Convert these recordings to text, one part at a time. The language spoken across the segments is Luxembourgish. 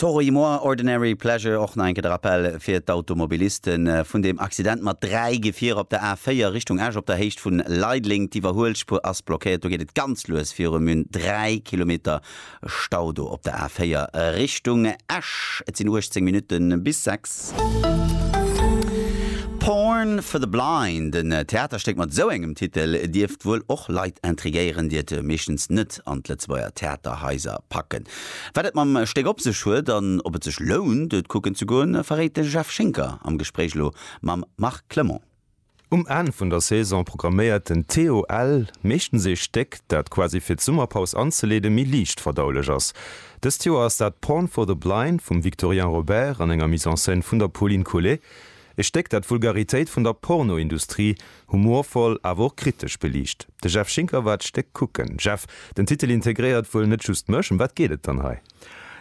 Toroï Moi, Ordinary Pleasure, och nach eng Kéier de Rappell fir d'Automobiliste vun deem Accident mat dräi Gefierer op der A4 Richtung Esch op der Héicht vun Leideleng. D'Iwwerhuelspuer ass blockéiert, do geet et ganz lues viru Mün. Dräi Kilometer Stau do op der A4 Richtung Esch. Et sinn 18 Minutte bis sechs. Porn for the Blind, en Theaterstéck mat esou engem Titel dierft wuel och Leit intrigéieren, déi et meeschtens net direkt an d'Lëtzebuerger Theaterhaiser packen. Wat et mam Stéck op sech huet an ob et sech lount, et kucken ze goen, verréit de Jeff Schinker am Gespréich elo mam Marc Clement. Um Enn vun der Saison programméiert den TOL meeschtens ee Stéck, dat quasi fir d'Summerpaus anzeleeden méi liicht verdaulech ass. Dëst Joer ass dat Porn for the Blind vum Victorien Robert an enger Mise en scène vun der Pauline Collet. E Stéck, dat d'Vulgaritéit vun der Pornoindustrie humorvoll, awer och kritesch beliicht. De Jeff Schinker war d'Stéck kucken. Jeff, den Titel integréiert wuel net just mech. Ëm wat geet et dann hei?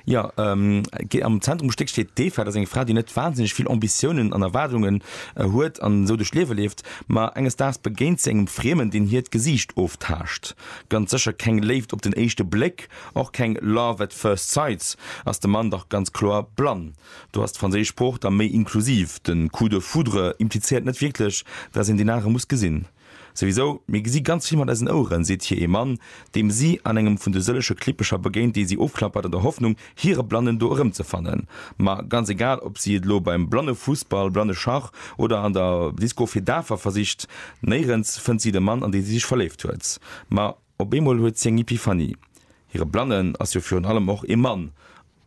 Jo, am Zentrum vum Stéck steet d'Eva. Dat ass eng Fra, déi net wahnsinneg vill Ambitiounen an Erwaardungen huet an esou duerch d'Liewe leeft. Ma enges Daags begéint si engem Friemen, deen hiert Gesiicht oftaascht. Ganz sécher keng Léift op den éischte Bléck, och keng Love at first sights, ass de Mann dach ganz kloer blann. Do ass d'franséisch Sprooch da méi inklusiv. De coup de foudre implizéiert net wierklech, dass een deen anere muss gesinn. Souwisou, mir gesi ganz vill mat eisen Oueren, seet hir ee Mann, deem si an engem vun de sëllege Klippecher begéint, déi si ofklappert an der Hoffnung, hire Blannen do erëmzefannen. Ma ganz egal, ob si et elo beim Blannefussball, Blanneschach oder an der Disco fir Dafer versicht, néirens fënnt si de Mann, an dee si sech verléift huet. Ma. Op eemol huet si eng Epiphanie, Hire Blannen ass jo virun allem och ee Mann,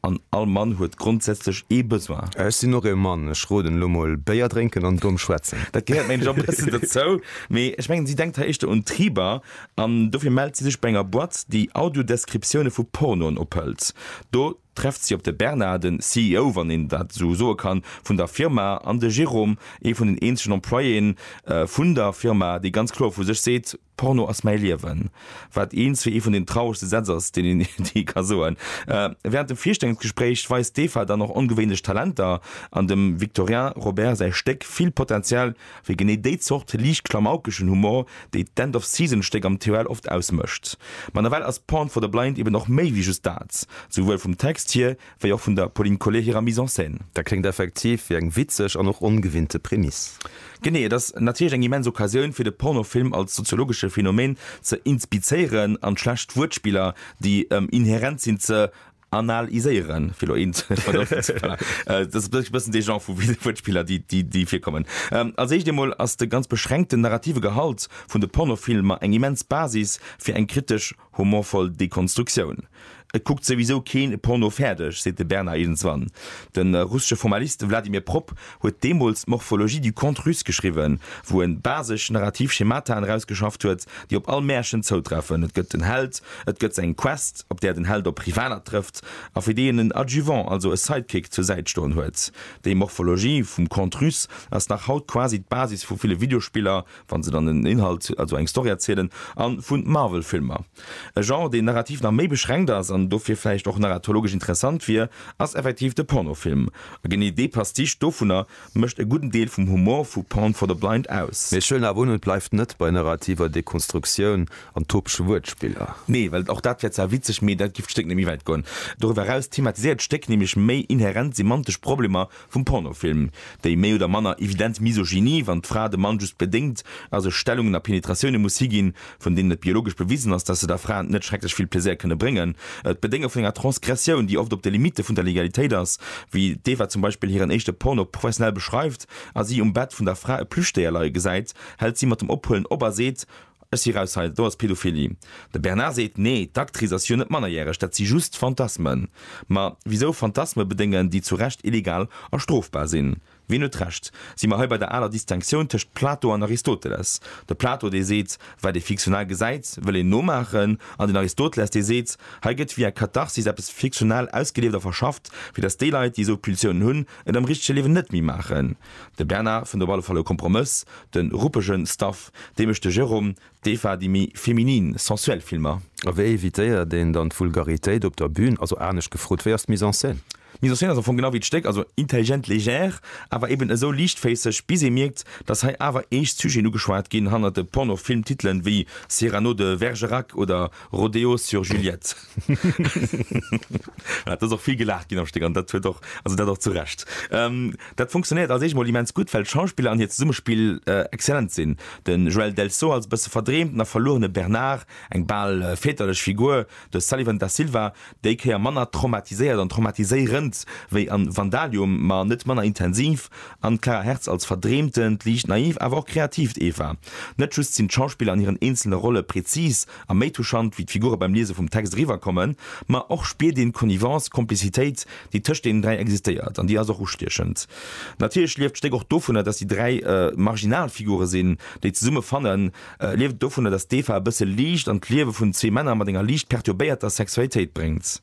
an all Mann huet grondsätzlech ee Besoin. Ech sinn och ee Mann, ech roden elo mol, Béier drénken an domm schwätzen. Dat gehéiert mengen ech och e bëssen dozou, mee ech mengen si denkt hei éischter un Triber, an dofir mellt si sech bei enger Boîte, déi Audio-Descriptioune vu Pornoen ophëlt. Do trefft si op de Bernard, den CEO, wann een dat esou soe kann, vun der Firma, an de Jérôme, ee vun den eenzegen Employéen vun der Firma, dee ganz kloer vu sech seet, Porno ass mäi Liewen, wat eens fir ee vun den trauregste Sätz ass, deen een jee ka soen. Wärend dem Virstellungsgespréich weist d'Eva dann och ongewéinlech Talenter an dem Victorien Robert säi Stéck vill Potenzial fir genee déi Zort liicht klamaukeschen Humor, déi d'End of Season Stéck am TOL oft ausmécht. Ma nawell ass Porn for the Blind eben och méi wéi just dat, souwuel vum Text hier, Wéi och vun der Pauline Collet hirer Mise en scène. Dat kléngt effektiv wéi eng witzeg an och ongewinnte Prämiss. Genee, et ass natierlech eng immens Occasioun, fir de Pornofilm als soziologesche Phänomen ze inspizéieren an d'schlecht Wuertspiller, déi ëm inherent sinn, ze anal-iséieren, fir elo eent vergëffen ze kréien. Dat ass e bëssen dee Genre vu Wuertspiller, déi virkommen. Als éischt eemol ass de ganz beschränkten narrative Gehalt vun de Pornofilmer eng immens Basis fir eng kritesch. Humorvoll Dekonstruktioun. Et kuckt souwisou keen Porno fäerdeg, seet de Bernard Irnswan. De russesche Formalist Vladimir Propp huet deemools d'Morphologie du conte russe geschriwwen, wou en basesch narrativ Schemataen erausgeschafft huet, déi op all Märchen zoutreffen, Et gëtt en Held, et gëtt eng Quest, op där den Held op Rivaler trëfft a fir déi en en Adjuvant, also e Sidekick, zur Säit stoen huet. Déi Morphologie vum Conte russe ass nach haut quasi d'Basis vu ville Videospiller, wann se dann en Inhalt, also eng Story erzielen, a vu Marvel-Filmer. E Genre, deen narrativ nach méi beschränkt ass an dofir vläicht och narratologesch interessant wier, ass effektiv de Pornofilm. A genee dee Pastiche dovunner mécht e gudden Deel vum Humor vu Porn for the Blind aus. Mee ech huelen awer un, et bleift net bei narrativer Dekonstruktioun an topege Wuertspiller. Nee, well och dat wär zwar witzeg, mee dat giff d'Stéck net méi wäit goen. Doriwwer eraus thematiséiert d'Stéck nämlech méi inherent semantesch Problemer Vum Pornofilm, déi méi oder manner evident Misogynie, wann d'Fra dem Mann just bedéngt a sech Stellungen a Penetratioune muss higinn, vun deenen et biologesch bewisen ass, datt se der Fra net schrecklech vill Plaisir kënne bréngen, d'Bedénge vun enger Transgressioun, déi oft op de Limitte vun der Legalitéit ass, wéi d'Eva zum Beispill hiren éischte Porno professionell beschreift a si um Bett vun der Fra e Plüschdéier leie gesäit, hält si mat dem Ophuelen op a seet, Ech si raus hei, do ass Pedophilie. De Bernard seet, Nee, d'Actrice ass jo net mannerjäreg, dat si just Fantasmen. Ma wisou Fantasme bedéngen, déi zu Recht illegal a strofbar sinn? Wien huet Recht? Si mer hei bei der aler Distinctioun tëscht Plato an Aristoteles. De Plato, dee seet, Wat ee fiktional gesäit, wëll een nomaachen. An den Aristoteles, dee seet, Hei gëtt via Katharsis eppes fiktional ausgelieft a verschafft, fir datt déi Leit, déi esou Pulsiounen hunn, et am richtege Liewen net méi maachen. De Bernard fënnt op alle Fall e Kompromëss, de ruppege Stuff, dee mécht de Jérôme, d'Eva déi méi feminin, sensuell Filmer. A wéi evitéiert een dann d'Vulgaritéit op der Bün? Also anescht gefrot, wéi ass d'Mise en scène? D'Mise en scène ass am Fong genau wéi d'Stéck, also intelligent légère, awer eben esou liichtféisseg, bis ee mierkt, datt hei awer eescht Sujeten ugeschwat ginn, hannert de Porno-Film-Titelen wéi Cyrano de Vergerac oder Rodeo sur Juliette. Et ass och vill gelaacht ginn am Stéck an dat huet och, also dat och zu Recht. Dat funktionéiert als eescht emol immens gutt, well d'Schauspiller an hiert Zesummespill exzellent sinn. De Joël Delso als e bësse verdreemten a verluerene Bernard, eng bal väterlech Figur, de Sullivan da Silva, déi Kéier manner traumatiséiert an traumatiséirend wéi an Vandalium, ma net manner intensiv, an d'Clara Hertz als verdreemtent, liicht naiv, awer och kreatiivt Eva. Net just sinn d'Schauspiller an hiren eenzele Rolle präzis A méi touchant wéi d'Figure beim Liese vum Text eriwwer kommen, ma och spiert een d'Connivence, d'Komplizitéit, déi tëscht deenen dräi existéiert. An déi ass och ustiechend. Natierlech lieft d'Stéck och dovunner, datt déi dräi marginal Figure sinn, déi zesumme fannen, lieft et dovunner, datt d'Eva e bësse Liicht an d'Liewe vun zwee Männer mat enger liicht perturbéierter Sexualitéit bréngt.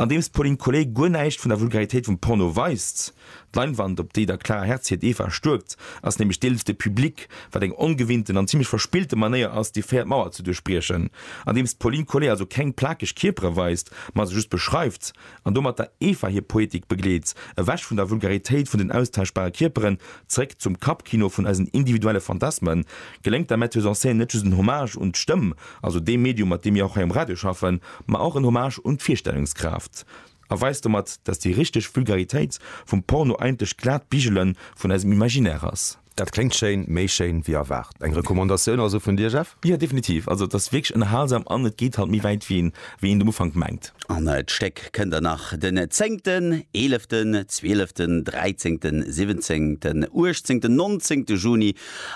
Andeems d'Pauline Collet guer näischt vun der Vulgaritéit vum Porno weist, D'Leinwand, op déi der Clara Hertz hiert Eva stuerkt, ass nämlech d'Elf de Public, wat eng ongewinnten an zimlech verspillte Manéier ass, déi véiert Mauer ze duerchbriechen. Andeems d'Pauline Collet also keng plakeg Kierpere weist, ma se just beschreift, an domat der Eva hir Poetik begleet, ewech vun der Vulgaritéit vun den austauschbare Kierperen, zeréck zum Kappkino vun eisen individuelle Fantasmen, geléngt der Metteuse en scène net just en Hommage un d'Stëmm, also dee Medium, mat deem mir och hei um Radio schaffen, ma och en Hommage un d'Virstellungskraaft. A weist domat, dass déi richteg Vulgaritéit vum Porno eigentlech d'glaat Bigele vun eisem Imaginaire ass. Dat kléngt schéin, méi schéin wéi erwaart. Eng Recommandatioun also vun dir, Jeff? Jo, definitiv. Also et ass wierklech ënnerhalsam an et geet halt méi wäit wéi een et um Ufank mengt. An d'Stéck kënnt der nach den zéngten, eeleften, zwieleften, dräizéngten, siwwenzéngten, uechtzéngten, nonzéngte Juni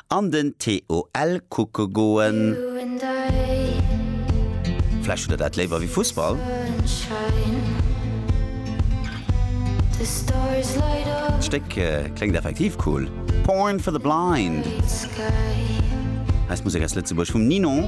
An den TOL kucke goen. Vläicht hutt der dat léiwer wéi Fussball? D'Stéck kléngt effektiv cool. Porn for the Blind, eis Musek aus Lëtzebuerg vum Ninon.